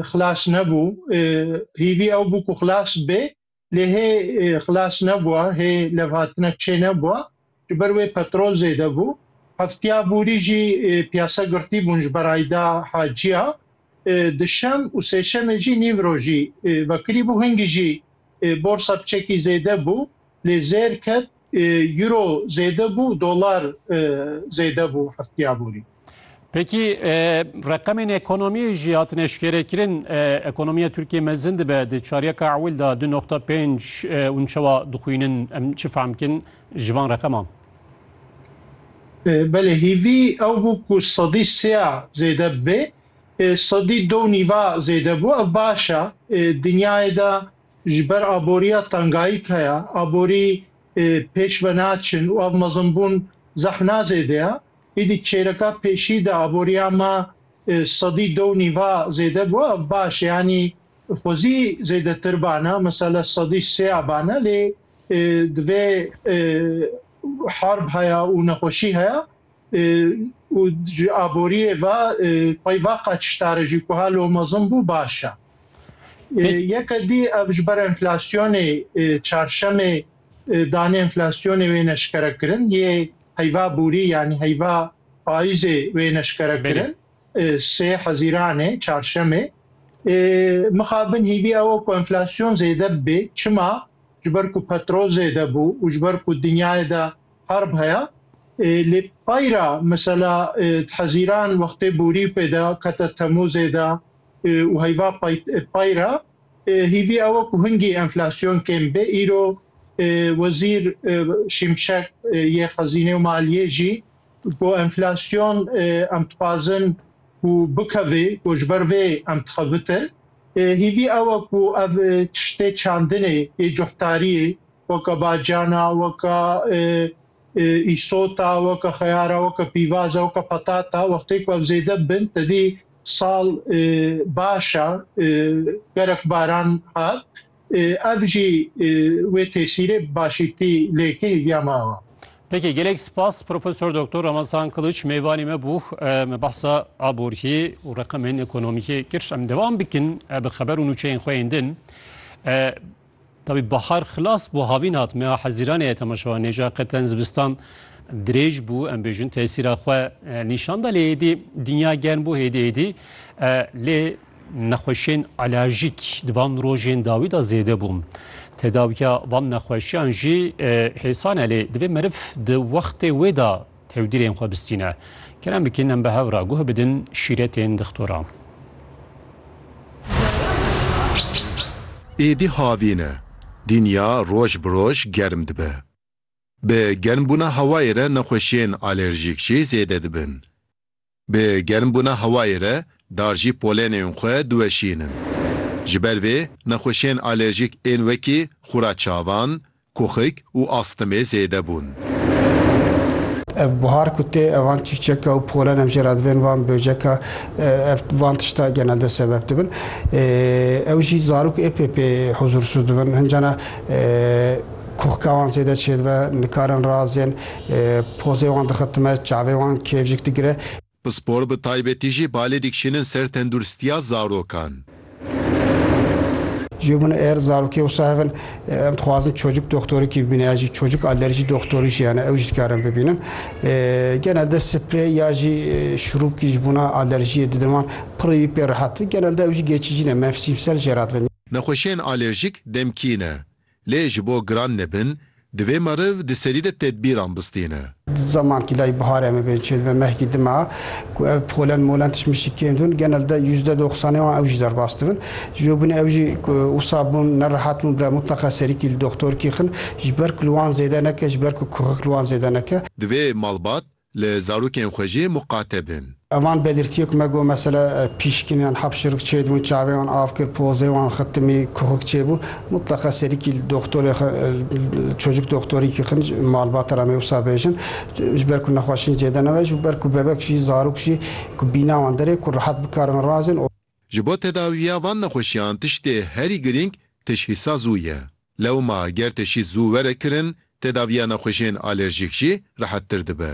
xilas nebû. Hîvî ew bû ku xilas bê lê hê xilas nebûa, hê levhatina çê nebûa. Ji ber wê petrol zêde bû. Heftiya borî jî piyase girtî bûn ji ber Ayda Haciya. Di şem û sêşemê jî nîvrojî vekirî bû. Hingî jî borsa bi çekî zêde bû. lê zêr ket, euro zêde bû, dolar zêde bû heftiya borî. Pekî reqemên ekonomiyê jî hatin eşkerekirin, ekonomiya Tirkiyê mezin dibe, di çaryeka ewil de du noqta pênc hûn çawa dixwînin, em çi fehm bikin ji van reqeman? Belê hîvî ew bû ku sedî sêya zêde bibe, sedî do û nîva zêde bû, ev baş e, dinyayê de Ji ber aboriya tengayîk heye, aborî pêş ve naçin û ev mezinbûn zehna zêde ye. Îdî çêreka pêşî de aboriya me sedî du û nîva zêde bû. Ev baş e yanî xwezî zêdetir bane, mesele sedî sê ya bane lê divê harb heye û nexweşî heye û ji aboriyê ve xwe ve qeçişdar e jî ku ha lo mezin bû baş e. Yeke dî ev ji ber enflasyonê çarşemê danê enflasyonê wê neşkere kirin yê heyva borî yanî heyva payîzê wê neşkere kirin sê hezîranê çarşemê mixabin hîvî ew ku enflasyon zêde bibê çima ji ber ku petrol zêde bû û ji ber ku dinyayê de Harb heye lê payra mesela Hezîran wextê borî pê de kete Temûzê de û heyva payra hîvî ew e ku hingî enflasyon kêm bê. Îro Wezîr Şimşek yê Xezînê û Maliyê jî got enflasyon em dixwazin ku bikeve got ji ber vê em dixebitin. Hîvî ew e ku ev tiştê çandinê yê cuhdariyê weke bacana, weke îsota, weke xeyara, weke pîvaza, weke petata wextê ku ev zêde bin tedî sal baş e gerek baran hat ev jî wê tesîrê bi başîtî lêkê hîviya me awa. Peki gelek spas Profesör Doktor Ramazan Kılıç meyvanê me bû me bahsa aboriyê û reqemên ekonomîkê kir. Em devam bikin bi xeber û nûçeyên xwe yên din. Tabî bahar xilas bû havîn hat meha hezîranê ye temaşewa nêja qeten zivistan dirêj bû em bêjin tesîra xwe e, nîşan da lê êdî dinya germ bû êdî êdî e, lê nexweşên alerjîk di van rojên dawî da zêde bû. Tedawiya van nexweşiyan jî e, hêsan e lê divê meriv di wextê wê da Tewdîrên xwe bistîne. Kerem bikin em bi hev re guh bidin şîretên dixtora. Êdî havîn e. Dinya roj bi roj germ dibe. Bi germbûna hewayê re nexweşiyên alerjîk jî zêde dibin. Bi germbûna hewayê re dar jî polenên xwe diweşînin. Ji ber vê nexweşiyên alerjîk ên wekî xûra çavan, kuxik û astmê zêde bûn. Ev buhar ku tê evan çîçeka û polen em jê re divên van böceka ev van tişta genelde sebeb dibin. Ew jî zarok êpê pê huzûrsûz dibin. Hincana. Kuxka wan zêde çêdibe, nikarin razên, pozê wan dixitime, çavê wan kêfjik digire. Pispor bi taybetî jî balê dikişînin ser tenduristiya zarokan. Ji bin êr zarokê wisa hev in, em dixwazin çocuk doxtorikî bibîne ya jî çocuk alerjî doxtorî jî hene ew jî dikarin bibînin. Genelde sprey ya jî şurûpkî ji bona alerjiyê didin wan, pirrî wî pê rehet. Genelde ew jî geçîcî ne, mevsîmsel jê re dibin. Nexweşiyên alerjîk demkî ne. Lê ji bo giran nebin, divê meriv di serî de tedbîran bistîne. Di zeman kîlayî bihar em ê bên çê dibe mehkî dima ku ev polen molen tişt mişt kêm dibin genel de yüzde doxsanê wan ew jî derbas dibin. Ji bo binê ew jî ku wisa bûn nerehat bûn bire mutleqa serîkî li doxtor kîxin ji ber ku li wan zêde neke ji ber ku kuxik li wan zêde neke. Divê malbat Li zarokên xwe jî muqate bin. Van Bedirtiyê ku me got mesela pîşkin yan hapşirik çê dibûn, çavê wan av kir, pozê wan xitimî, kuxik çê bû. Mutleqa serîkî li doxtorê xwe, li çocuk doxtorî kî xin, malbata re me wisa bêjin. Ji ber ku nexweşîn zêde nebe ji ber ku bebek jî, zarok jî ku bîna wan derê ku rehet bikarin razin. Ji bo tedawiya van nexweşiyan tiştê herî girîng tişhîsa zû ye. Lewma ger teşhîs zû were kirin, tedaviya nexweşiyên alerjîk jî rehettir dibe.